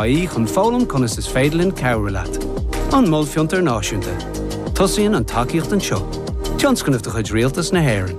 ie chun foghlaim conas is féidir linn cabhrú leat. An Mol Fiontar Náisiúnta. Tosaíonn an tacaíocht anseo. Tionscnamh de chuid Rialtas na hÉireann.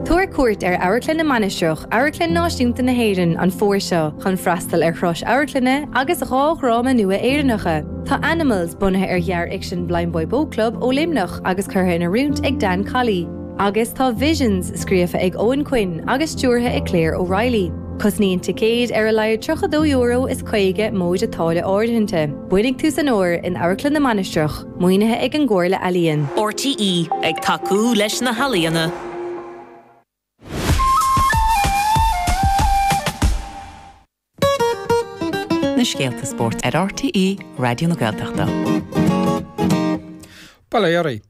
Tabhair cuairt ar Amharclann na Mainistreach, Amharclann Náisiúnta na hÉireann, an fómhar seo chun freastal ar shrois amharclainne agus dhá dhráma nua Éireannacha. Tá Animals bunaithe ar ghearr-fhicsean Blindboy Boatclub ó Luimneach agus curtha in oiriúint ag Dan Colley. Agus tá Visions scríofa ag Eoghan Quinn agus stiúrtha ag Claire O'Reilly. Cosnaíonn ticéid ar a laghad €32 is 50 móide táille áirithinte. Bainfidh tú san úr in Amharclann na Mainistreach, maoinithe ag an gComhairle Ealaíon. RTÉ, ag tacú leis na healaíona. Na scéalta spóirt ar RTÉ Raidió na Gaeltachta. Bail ó Dhia oraibh.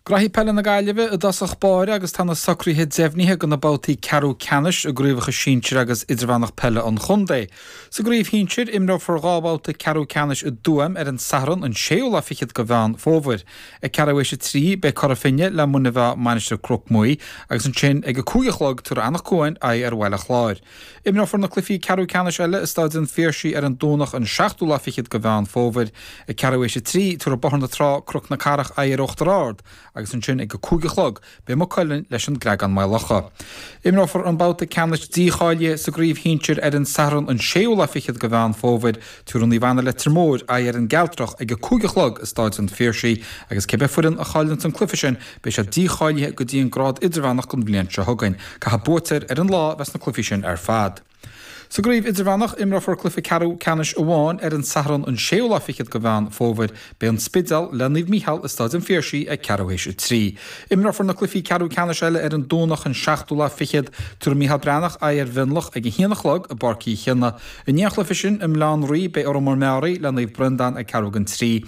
Gnóthaí peile na Gaillimhe i dtosach báire agus tá na socruithe deimhnithe do na babhtaí ceathrú ceannais i gcraobhacha sinsir agus idirmheánach peile an chontae. Sa gcraobh shinsir, imreofar dhá bhabhta ceathrú ceannais i dTuaim ar an Satharn an 6ú lá fichead de Mheán Fómhair. Ag ceathrú théis a trí beidh Cora Finne le Muine Mheá Mainistir Chnoc Muaidhe agus ansin ag a cúig a chlog tabharfaidh Anach Cuain aghaidh ar Bhaile Chláir. Imreofar na cluichí ceathrú ceannais eile i Stáid an Phiarsaigh ar an Domhnach an seachtú lá fichead de Mheán Fómhair. Ag ceathrú théis a trí, tabharfaidh Bóthar na Trá, Cnoc na Cathrach aghaidh ar Uachtar Ard agus ansin ag a cúig a chlog, beidh Maigh Cuilinn leis an gCreagán-Maigh Locha. Imreofar an babhta ceannais dícháilithe sa gcraobh shinsir ar an Satharn an séú lá fichead de Mheán Fómhair. Tabharfaidh Naomh Anna Leitir Móir aghaidh ar an gCealtrach ag a cúig a chlog i Stáid an Phiarsaigh agus cé bith foireann a chailleanns an cluiche sin, Beidh sé dícháilithe go dtí an grád idirmheánach don bhliain seo chugainn. Caithfidh buaiteoir ar an lá a bheith sna cluichí sin ar fad. Sa gcraobh idirmheánach, imreofar cluiche ceathrú ceannais amháin ar an Satharn an séú lá fichead de Mheán Fómhair. Beidh an Spidéal le Naomh Micheál i Stáid an Phiarsaigh ag ceathrú théis a trí. Imreofar na cluichí ceathrú ceannais eile ar an Domhnach an seachtú lá fichead. Tabharfaidh Micheál Breathnach aghaidh ar Mhionlach ag a haon a chlog i bPáirc Uí Chionnaith. I ndiaidh an chluiche sin i mBaile Átha an Rí beidh Órán Mór-Meáraí le Naomh Breandán ag ceathrú don trí.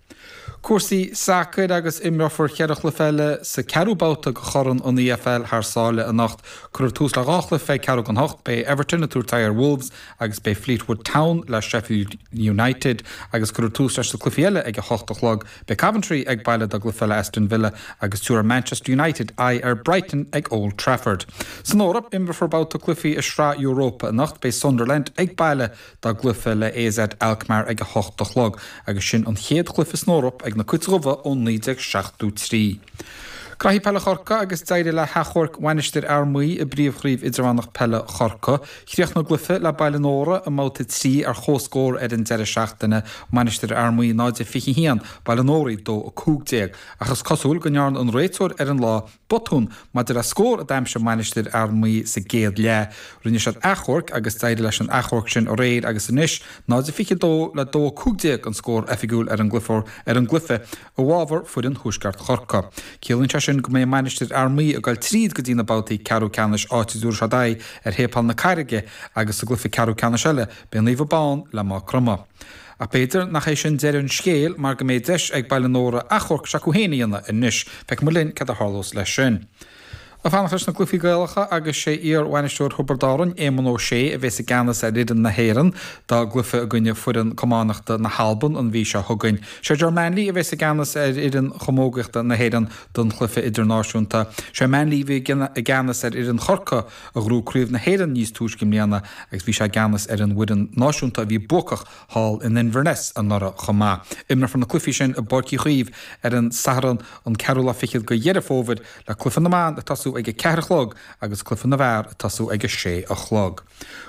Cúrsaí sacair agus imreofar ceithre chluiche eile sa 4ú babhta de Chorn an EFL thar sáile anocht. Cuirfear tús le dhá chluiche ag ceathrú don hocht, beidh Everton ag tabhairt aghaidh ar Wolves agus beidh Fleetwood Town le Sheffield United agus cuirfear tús leis na cluichí eile ag a hocht a chlog. Beidh Coventry ag baile dá gcluiche le Aston Villa agus tabharfaidh Manchester United aghaidh ar Brighton ag Old Trafford. San Eoraip, imreofar babhta cluichí i Sraith Europa anocht, beidh Sunderland ag baile Dá gcluife le AZ Alkmaar ag a hocht a chlog agus sin an chéad chluife san Eoraip ag na Cuit Dhubha ó 1973. Gnóthaí peile Chorcaí agus d'éirigh le hachomharc Mhainistir Fhear Maí i bPríomh Chraobh Idirmheánach Peile Chorcaí. Chríochnaigh a gcluife le Baile an Óra i mbabhta 3 ar chomhscór ar an deireadh seachtaine, Mainistir Fhear Maí 0-21, Baile an Óraigh 2-15, ach is cosúil go ndearna an réiteoir ar an lá Botún maidir le scór a d'aimsigh Mainistir Fhear Maí sa gcéad leath. Rinne siad achomharc agus d'éirigh leis an achomharc sin aréir agus anois, 0-22 le 2-15 an scór oifigiúil ar an gcluiche i bhfábhar foireann Thuaisceart Chorcaí. Ciallaíonn sé sin go mbeidh Mainistir Fhear Maí ag dul tríd go dtí na babhtaí ceathrú ceannais áit a dtabharfaidh siad aghaidh ar Shéipéal na Carraige agus sa gcluiche ceathrú ceannais eile, beidh Naomh Abán le Maigh Chromtha. Ach b'fhéidir nach é sin deireadh an scéil mar go mbeidh deis ag Baile Nóra achomharc s'acu féin a dhéanamh anois. Feicfimid linn céard a tharlós leis sin. Ag fanacht leis na gcluichí Gaelacha agus sé iar-bhainisteoir Thiobraid Árann, Éamonn Ó Sé, a bhéas i gceannas ar fhoireann na hÉireann dá gcluiche i gcoinne foireann camánachta na hAlban an mhí seo chugainn. Sé Ger Manley a bhéas i gceannas ar fhoireann chamógaíochta na hÉireann don chluiche idirnáisiúnta. Sé Manley a bhí i gceannas ar fhoireann Chorcaí a ghnóthaigh Craobh na hÉireann níos túisce i mbliana agus bhí sé i gceannas ar an bhfoireann náisiúnta a bhí buacach thall in Inverness anuraidh chomh maith. Imreofar na cluichí sin i bPáirc Uí Chaoimh ar an Satharn an ceathrú lá fichead de Dheireadh Fómhair le cluiche na mban ag tosú ag a ceathair a chlog agus cluiche na bhfear ag tosú ag a sé a chlog.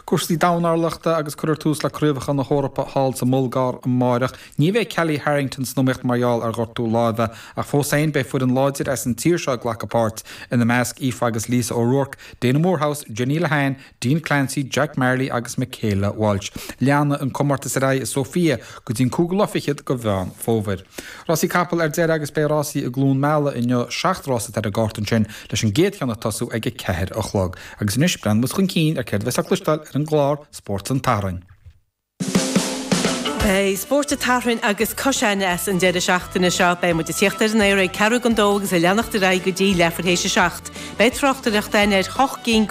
Cúrsaí dornálaíochta agus cuirfear tús le Craobhacha na hEorpa thall sa mBulgáir amáireach. Ní bheidh Kellie Harrington san iomaíocht mar gheall ar ghortú láimhe, ach fós féin beidh foireann láidir as an tír seo ag glacadh páirt, ina measc Aoife agus Lisa O'Rourke, Daina Moorehouse, Jenny Lehane, Dean Clancy, Jack Marley agus Michaela Walsh. Leanfaidh an comórtas ar aghaidh i Sóifia go dtí an cúigiú lá fichead de Mheán Fómhair. Rásaí capall ar deireadh agus beidh rásaí i gCluain Meala inniu, seacht rás atá ar an gcárta ansin leis an gcéad cheann ag tosú ag a ceathair a chlog. Agus anois breathnóimid chun cinn ar céard a bheas le cloisteáil ar an gclár Spórt an tSathairn. Beidh Spórt an tSathairn agus cois aithne as an deireadh seachtaine seo. Beidh muid ag teacht ar an aer ag ceathrú don dó agus ag leanacht ar aghaidh go dtí leathuair tar éis a seacht. Beidh tráchtaireacht againn ar shoc cinn go.